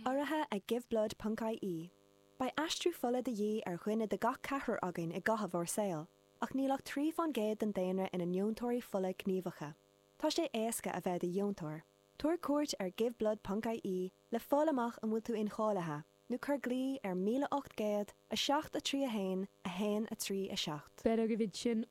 Urraithe ag Give Blood ponc IE. Beidh aistriú fola de dhíth ar dhuine de gach ceathrar againn i gcaitheamh ár saoil, ach níl ach trí fán gcéad den daonra ina ndeontóirí fola gníomhacha. Tá sé éasca a bheith i do dheontóir. Tabhair cuairt ar Give Blood ponc IE le fáil amach an bhfuil tú incháilithe, nó cuir glao ar 1800 7 3 1 1 3 7. Bhí agaibh ansin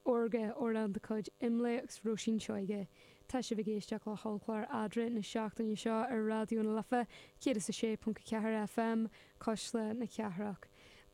Órga, amhrán de chuid Imlé agus Róisín Seoighe. Tá sibh ag éisteacht le hOllchlár Eadra na seachtaine seo ar Raidió na Life 106.4 FM, Cuisle na Cathrach.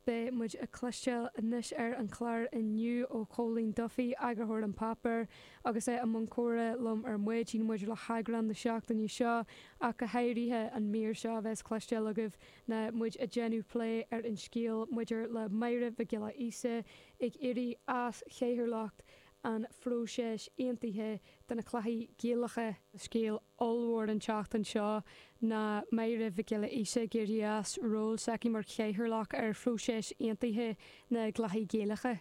Beidh muid ag cloisteáil anois ar an chlár inniu ó Chóilín Duffy, eagarthóir an páipéir, agus é i mbun comhrá liom ar maidin maidir le heagrán na seachtaine seo ach go háirithe. An mír seo a bheas le cloisteáil agaibh ná muid ag déanamh plé ar an scéal maidir le Máire Mhic Giolla Íosa, ag éirí as chathaoirleacht an phróiseas aontaithe do na cluichí Gaelacha. Scéal ollmhór an tseachtain seo ná Máire Mhic Giolla Íosa ag éirí as ról s'aici mar chathaoirleach ar phróiseas aontaithe na gcluichí Gaelacha.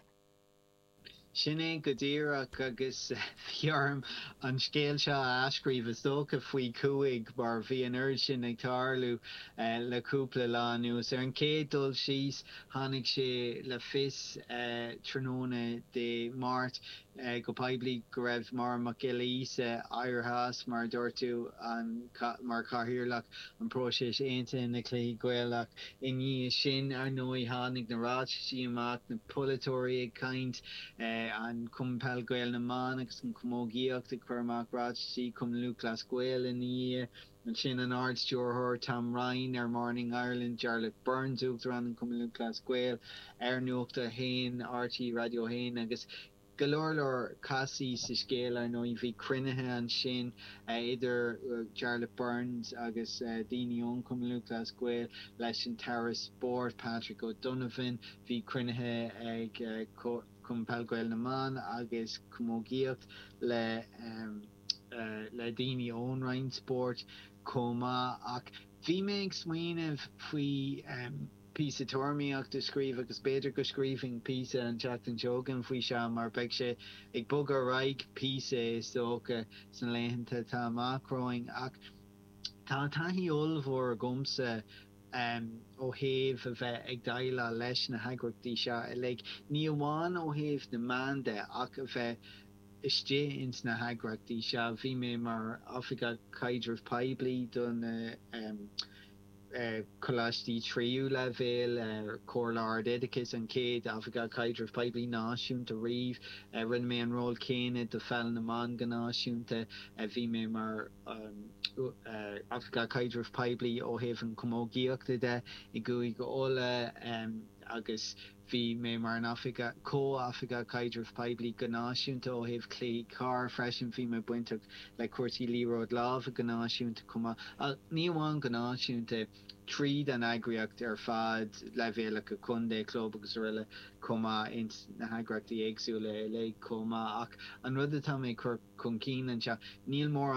Sin é go díreach agus bhí orm an scéal seo a athscríobh, is dócha, faoi chúig, mar bhí an oiread sin ag tarlú le cúpla lá anuas. Ar an chéad dul síos, Tháinig sé le fios tráthnóna Dé Máirt go poiblí go raibh Máire Mac Giolla Íosa éirithe as, mar a dúirt tú, mar chathaoirleach an próiseas aontaithe na gCluichí Gaelach. I ndiaidh sin, ar ndóigh, tháinig na ráitisí amach, na polaiteoirí ag caint, an Cumann Peil Gael na mBan agus an Chamógaíocht ag cur amach ráitisí, Cumann Lúthchleas Gael ina dhiaidh. Ansin an Ard-Stiúrthóir Tom Ryan ar Morning Ireland, Jarlath Burns, Uachtarán an Chumainn Lúthchleas Gael ar Nuacht a hAon, RTÉ Raidió a hAon agus go leor leor castaí sa scéal, ar ndóigh. Bhí cruinnithe ansin idir Jarlath Burns agus daoine ón Chumann Lúthchleas Gael leis an tAire Spóirt, Patrick O'Donovan. Bhí cruinnithe ag Cumann Peil Gael na mBan agus Camógaíocht le. le daoine ón Roinn Spóirt chomh maith ach bhí mé ag smaoineamh faoi phíosa tuairimíocht a scríobh agus b'fhéidir go scríobhfainn píosa an tseachtain seo chugainn faoi seo mar beidh sé ag bogadh ar aghaidh píosa is dócha sna laethanta atá amach romhainn ach tá taithí ollmhór agamsa ó thaobh a bheith ag déileáil leis na heagraíochtaí seo uilig, ní amháin ó thaobh na meán de ach a bheith. istigh ins na heagraíochtaí seo. Bhí mé mar Oifigeach Caidrimh Poiblí do na coláistí tríú leibhéal, Comhairle Ard-Oideachais, an chéad Oifigeach Caidrimh Poiblí náisiúnta riamh. Rinne mé an ról céanna do Pheil na mBan go náisiúnta. Bhí mé mar Oifigeach Caidrimh Poiblí ó thaobh an chamógaíochta de i gCúige Uladh agus. Bhí mé mar an Oifigeach, Comh-Oifigeach Caidrimh Poiblí go náisiúnta ó thaobh Chluichí Corr freisin bhí mé bainteach le cúrsaí liathróid láimhe go náisiúnta chomh maith ach ní amháin go náisiúnta, tríd an eagraíocht ar fad, leibhéalacha contae, club agus aroile chomh maith ins na heagraíochtaí éagsúla uilig chomh maith ach an rud atá mé ag cur chun cinn anseo níl mórán